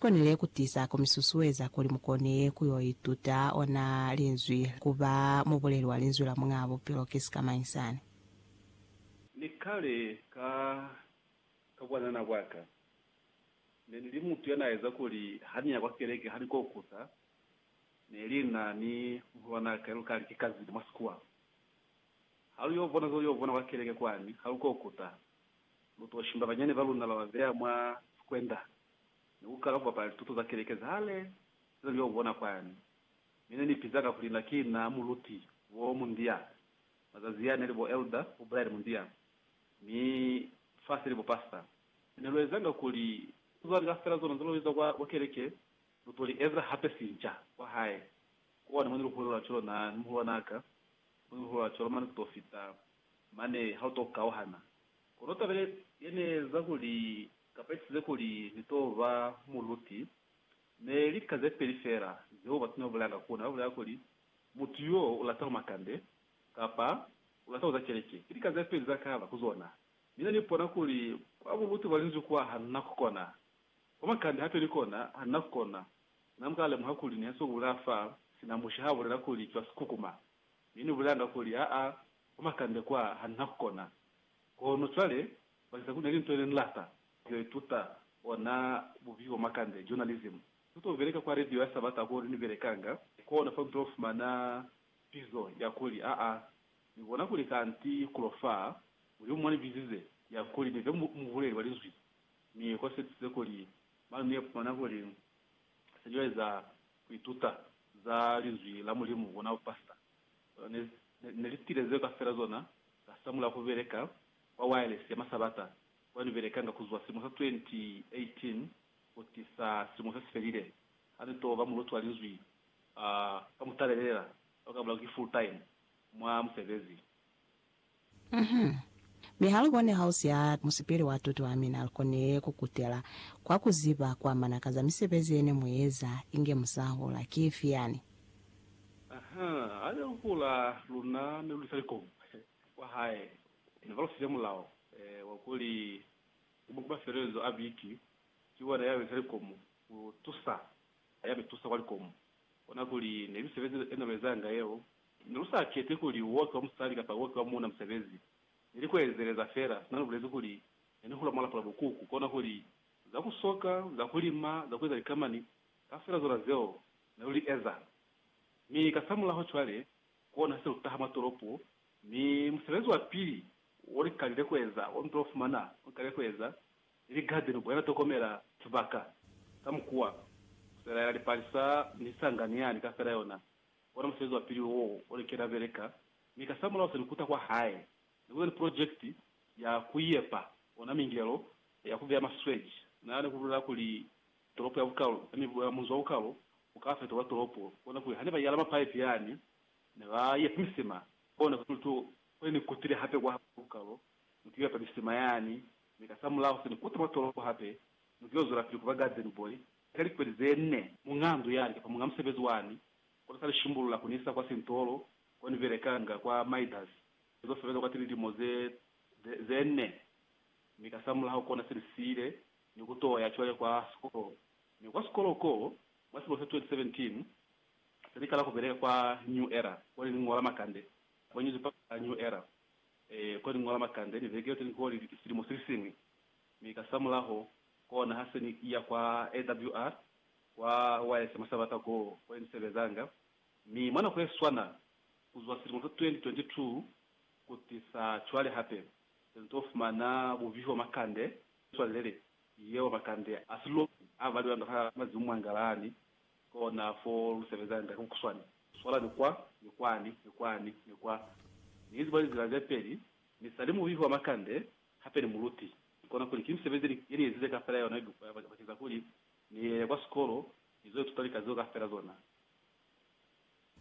Konile kutiza kumisusueza kuli mukone ku yo ituta ona Linzwi, ku ba mubuleli wa Linzwi la Muñaa Bupilo. Ki sikamañi sani? Ni kale ka, ka bwanana bwa ka, ne ni li mutu ya na eza kuli ha ni ya kwa keleke ha ni kokusa, neli na ni muhulwanaa ka ya lu kali ki kazini mwa sikuwa. Ha lu yo bona zo lu yo bona kwa keleke kwani, ha lu kokusa, lu to shimba banyani ba luna ba ba beya mwa sikwenda. ni ku kala ku bapala lituto za keleke za hale ze na li o bona kwani. Mi ne ni piza ka kuli na ki na muluti wo mundia. Mazazi a ne li bo elder, bo bride mundia, mi fa se li bo pastor. Mi ne lu ezanga kuli lituto za lika fela zona ze lu iza kwa keleke, lu to li eza hape sinca kwa hae. Ku one mo ni lu hulelwa cwalo na ni muhulwanaa ka, mo ni lu hulelwa cwalo mane ku to fita mane ha lu to kauhana. Kono taba ye, ye ne eza kuli Kapesize kuli ni to ba muluti, ne lika ze peli fela zeo batu ne ba bulelanga ku ona, ba bulela kuli, Mutu yo u lata makande, kapa, U lata kuza keleke. Ki lika ze peli za kaba ku zona. Mi ne ni pona kuli kwa buluti bwa Linzwi kwa ha na ku kona. Kwa makande hape ni kona, ha na ku kona. Na muka lemuha kuli ni hasiwe ku bulela fa, sina mushe ha bulela kuli ki wa sikukuma. Mi ni bulelanga kuli, Aa, kwa makande kwa, ha na ku kona. Kono cwale, baziba kuli na li nto yene nilata kuyo ituta, ona bubi bwa makande, journalism. Nituta kubeleka kwa radio ya Sabata ko ni belekanga, kona fa nituta kufumana pizo ya kuli, Aa, Ni bona kuli kanti kulo faa, Mulimu mwa ni bizize, ya kuli ni be mubuleli wa Linzwi. Mi ko setize kuli, mane ni ipumana kuli se ni yo eza ku ituta za Linzwi la Mulimu, bona bupasita. Ne, ne, ne li sitile zeo kafela zona, ka samula ku beleka kwa wayalesi ya masabata kwa ni belekanga ku zwa silimo sa 2018 ku tisa silimo se si felile, ha ni to ba muluti wa Linzwi, uh, ka mutalelela, lwa ka mulao ki full-time mwa musebezi. Uhum. Mi ha lu bone hausi ha musipili wa tuto ya mina, lu konile ku kutela kwa ku ziba kwa mana ka za misebezi ye ne mu eza inge mu sa hula. Ki ifi yani? Uhum. Ha ne lu hula, luna ne lu lisa likomu kwa hae. Ne ba lu fize mulao wa kuli ku ba ku mafelelezo a biki, ki wona ya lisa likomu ku tusa ya mi tusa kwa likomu. Kona kuli ne misebezi ye ne lu ezanga yeo Ne lu sa keti kuli u okiwa musali kapa u okiwa muuna musebezi, ne ni ku ezeleza fela sina lu bulezi kuli ne ni hula mwa lapula bukuku, kona kuli za ku soka, za ku lima, za ku eza likamani, kafela zona zeo ne lu li eza. Mi kasamulaho cwale, ku ona ha se lu taha mwa tolopo, mi musebezi wa pili wo ni kalile ku eza, wo ni to fumana wo ni kalile ku eza, ni ligade ni buela tokomela sibaka ka mukuwa, ku selaela lipalisa ni sangani yani kafela yona, Ona musebezi wa pili wo o li kena beleka, mi kasamulaho se ni kuta kwa hae. Ni kuza ni pulojekiti ya ku yepa ona mingelo ya ku beya masweji. Na ni ku bulela kuli, Tolopo ya bukalo, yani munzi wa bukalo, u ka fetolwa tolopo. Kona kuli hane ba yala mapaipi yani, ne ba yepa misima. Kona kuli tu kone ni kutile hape kwa bukalo, ni ku yepa misima yani, mi kasamulaho se ni kuta mwa tolopo hape, ni ku yo zwelapili ku ba garden boy Ka likweli ze nne, muñaa ndu ya lika fa muñaa musebezi wani, kona sa li shimbulula ku ni isa kwa sintolo ko ni belekanga kwa Midas. Ni zo sebeza kwati lilimo ze, ze, ze nne, mi kasamulaho kona se ni siile ni ku to ya cwale kwa sikolo. Mi kwa sikolo ko, mwa silimo sa 2017, se ni kala ku beleka kwa New Era, ko ne ni ñola makande, kwa nyuzipepa ya New Era, ee, ko ne ni ñola makande, ni vekile teni ko li silimo se li siñwi. Mi kasamulaho, kona ha se ni iya kwa AWR, kwa YS mwa sabata koo, ko ne ni sebezanga. Mi mwa nako ye swana, kuzwa silimo sa 2022 kutisa cwale hape, se ni to fumana bubihi bwa makande, swalelele yeo makande a siloki a valiwa nda ha mazimu mwa ngalani, kona fo lu sebezanga ka bukuswani, swalani kwa, ni kwani, ni kwani, ni kwa. Ni ziba lizila ze peli, mi sali mubihi wa makande Hape ni muluti. Ki kona kuli ki misebezi ye ni ezize kaufela ya yona ibupeha bakeng sa kuli ni ye kwa sikolo ni zo ituta lika zeo kaufela zona.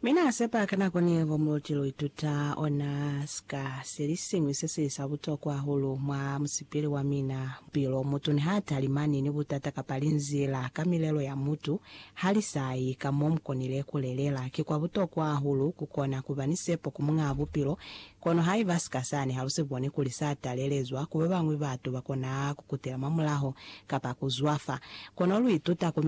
Mi na sepa ka nako ni ngo muluti lu ituta ona sika se li siñwi se si li sa butokwa hahulu mwa musipili wa mina. Bupilo, mutu niha talimani ni butata kapa linzila ka milelo ya mutu, ha li sa yi ka mo mu konile ku lelela. Ki kwa butokwa hahulu ku kona ku ba ni sepo ku Muñaa Bupilo Kono haiba sika sani ha lu si boni kuli sa talelezwa ku babañwi, batu ba kona ku kutela mwamulaho kapa ku zwafa. Kono lu ituta ku mina.